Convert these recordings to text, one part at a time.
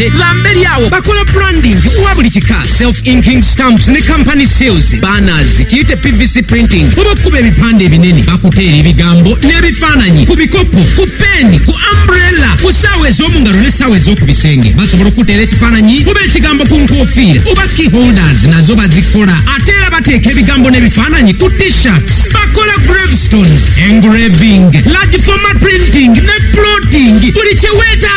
Abasaadhe ba mberi agho bakola branding wa buli kika, self inking stamps ni company seals, banners, kiyite pvc printing oba okukuba ebipande ebinene, bakuteera ebigambo n'ebifaananyi ku bikopo, ku peeni, ku umbrella, ku saawa ez'omu ngalo ne saawa ez'oku bisenge. Basobola okukuteera ekifaananyi oba ekigambo ku nkofiira oba key holders nazo bazikola. Ate era bateeka ebigambo n'ebifaananyi ku t-shirts. Bakola gravestones, engraving, large format printing ne plotting buli kye weetaaga.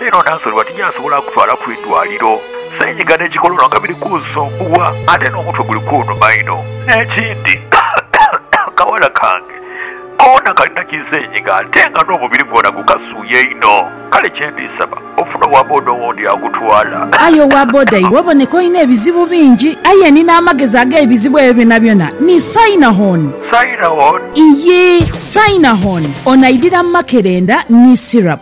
Leero Nansoliwa tijasobola kutwala ku idwaliro. Senyiga ne kikololo nga biri kunsumbuwa ate n'omutwe guli kunuma inho. N'ekindi akawala kange koona kalina ki senyiga ate nga n'omubiri gwona gukasuuya inho. Kale kye ndi saba ofune owa boda owundi agutwala. Aye owa boda iwe oboneka olina ebizibu bingi. Aye ni n'amagezi ag'ebizibu ebyo byonabyona ni Sainahon. Sainahon? Iyii, Sainahon. Ono aidhira mu makerenda ni syrup.